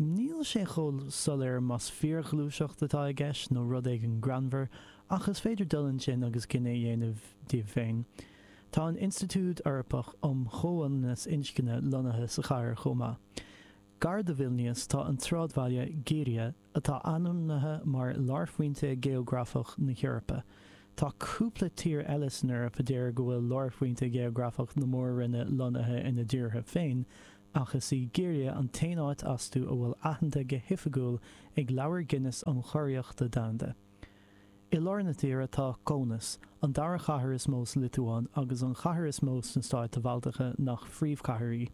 Níl sé chomh soiléir más fíorghluaiseacht atá i gceist nó rud éigin greannmhar, ach is féidir dul ansin agus cinneadh a dhéanamh daoibh féin. Tá an Institiúid Eorpach um Chomhionannas Inscne lonnaithe sa chathair chomh maith. Gar do Vilnias tá an tsráidbhaile Girija, atá ainmnithe mar lárphointe geografach na hEorpa. Tá cúpla tír eile san Eoraip a deir go bhfuil lárphointe geografach na mór-roinne lonnaithe ina dtíortha féin, ach is í Girija an t-aon áit astu a bhfuil aitheanta go hoifigiúil ag Leabhar Guinness um Churiarrachtaí Domhanda. I lár na tíre tá Kaunas, an dara chathair is mó sa Liotuáin agus an chathair is mó sna stáit Bhaltacha nach phríomhchathair í.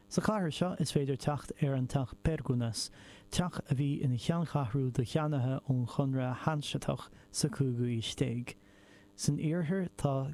Sa chathair seo is féidir teacht ar an teach Perkūnas, teach a bhí ina cheanncheathrú do cheannaithe ón Chonradh Hainseatach sa chúigiú haois déag. San iarthar tá.